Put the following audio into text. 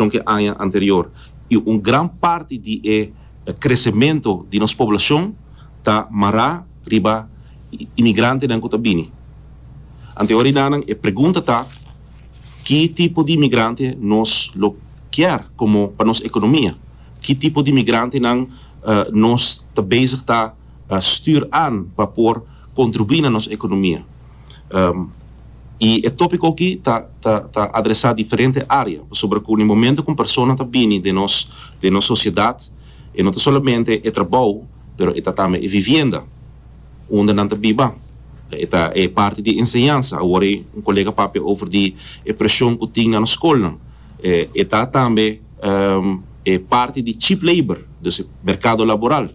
con ki e aña anterior y un gran parti di e crecemento di nos poblacion ta mará riba imigrantenan cu ta bini. Ante hora y nanan e pregunta ta ki tipo di imigrante nos lo kier como pa nos economia? Ki tipo di imigrantenan nos ta bezig ta stuur aan pa por contribui na nos economia? i e tópiko akí ta ta ta adresá diferente área, pasobra ku den momentu ku un persona ta bini den nos den nos sosiedat e no ta solamente e trabou pero e ta tambe e vivienda unda nan ta biba, e ta e parti di enseñansa, awor ei un kolega papia over di e preshon ku tin na nos skolnan, e ta tambe e parti di cheap labor, dus merkado laboral.